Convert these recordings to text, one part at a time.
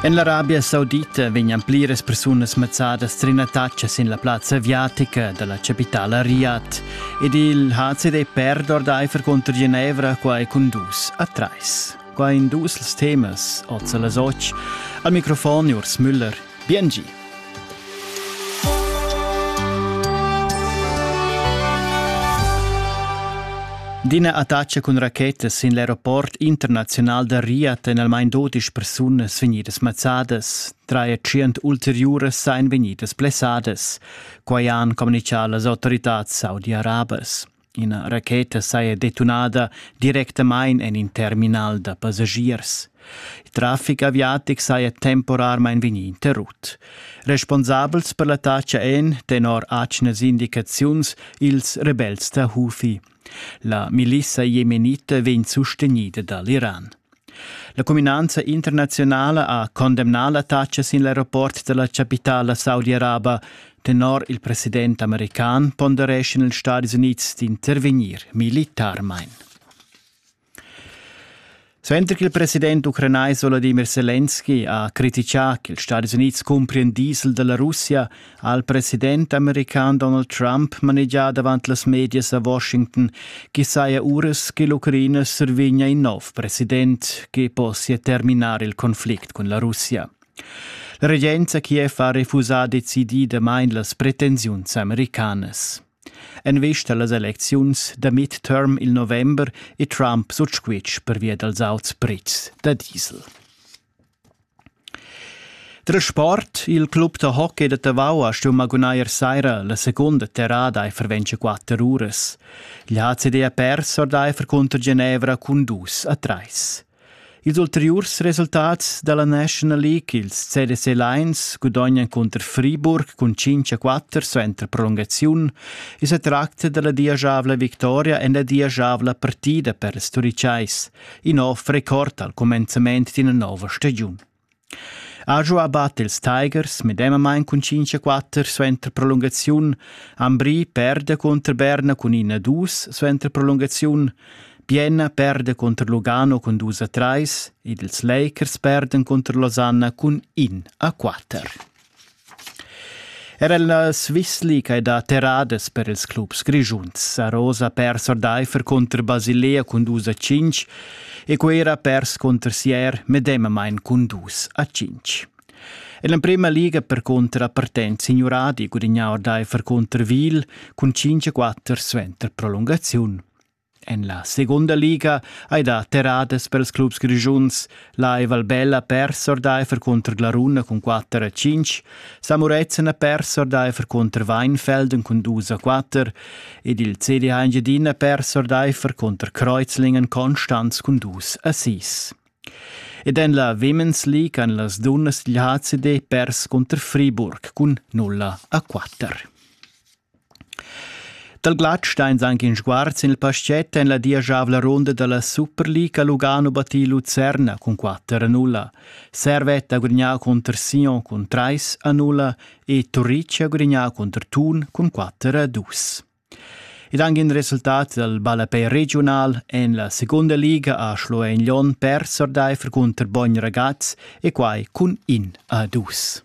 En l'Arabia Saudita vegnan pliras persunas mazzadas trinataccia sin la plazza aviatica da la capitala Riyadh ed il HCD perd ordaifer cunter Genevra qua e cun dus a trais. Qua in dus temas, oz a las otg. Al microfon Urs Müller, Biengi. D'ina attacca cun rachetas sin l'aeroport internaziunal da Riyadh èn almain dodisch persunas vegnidas mazzadas. Trais tschient ulteriuras èn vegnidas blessadas. Quai han communitgà las autoritads saudi-arabas. Ina racheta saja detunada directamain en in terminal da passagiers. Il traffic aviatic saja temporarmain vegnì interrut. Responsabels per l'attacca èn, tenor atgnas indicaziuns, ils rebels da Hufi. La milissa jemenita vegn sustegnida da l'Iran. La cuminanza internaziunala ha condemnà l'attacca sin l'aeroport da la chapitala saudi-araba. Tenor il president american pondereschan ils Stadis Unids d'intervegnir militarmain. Suenter che il president ucranais Volodymyr Zelensky ha critichà ch'ils Stadis Unids cumprien diesel da la Russia, ha il president american Donald Trump manegià davant las medias a Washington ch'i saja uras che l'Ucraina survegnia in nov president che possia terminar il conflict cun la Russia. La regenza Kiev ha refusà decididamain las pretensiuns americanas. En vista las elecziuns da midterm il november è Trump sut squitsch pervia dals auts pretschs da diesel. Tra sport, il club da hockey da Tavau ha stuì magunair saira la segunda terrada e ferventscha quatter uras. L'HCD ha pers ordaifer cunter Genevra cun dus a trais. Ils ulteriurs resultats dalla National League, ils CDC Lions, gudognan cunter Friburg cun 5 a 4 suenter prolungaziun e sa tracta dalla diagiavla victoria en la diagiavla partida per les Turicais. in nov record al cumenzament d'ina nova stagiun. Ajo abat ils Tigers medemamain cun 5-4 suenter prolungaziun, Ambri perde contro Berna cun 1-2 suenter prolungaziun, Bienna perde contro Lugano cun 2-3 ed ils Lakers perden contro Losanna cun 1-4. Er el na svizli ch'ei dat terradas per ils clubs grischuns. A Rosa ha pers ordaifer contr Basilea cun dus a cinc e quei era pers contr Sier medemamain cun dus a cinc. En l'emprima liga per contra partent Signuradi gudignà ordaifer contr Wil cun 5-4 suenter prolungaziun. En la segunda liga ei dat terradas pels clubs grischuns. La ei Valbella pers ordeifer cunter Glaruna cun 4 a 5. Samurezen ha pers ordeifer cunter Weinfelden cun 2 a 4 ed il CD Engiadina pers ordeifer cunter Kreuzlingen Konstanz cun 2 a 6. Ed en la Women's League han las dunnas dil HCD pers cunter Friburg cun 0 a 4. Dal glatsch stains anche in sguard sin il paschett en la diagiavla ronda da la Superliga Lugano battì Lucerna cun 4 a 0. Servette ha gudagnà cunter Sion cun 3 a 0 e Turrici ha gudagnà cunter Thun cun 4 a 2. Ed anche in resultat dal ballapei regional en la seconda liga a Schloen-Lyon pers ordaifer cunter Bogn Ragaz e quai cun in a dus.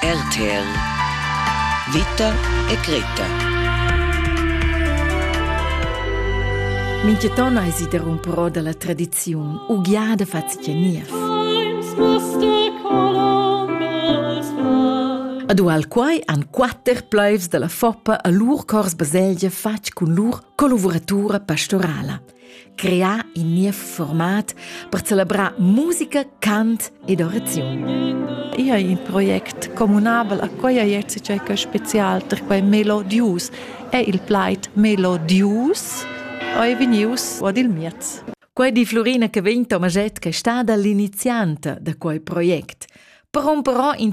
RTL Vita e Greta Mintgaton eisi derumperò dalla tradiziun ugliada fatga niev. Ad ual quai han quatter pleivs dalla Foppa a lur cors baselgia fatg cun lur collavuratura pastorala. crear in niev format per celebrar musica, cant ed oraziun. Io hai in project communabel a quella jerzi c'è che special per quei melodius è il plaid melodius è venius ad il miez. Quei di Florina che vegn Tomaschett che è stata l'inizianta da quei project. Per un però in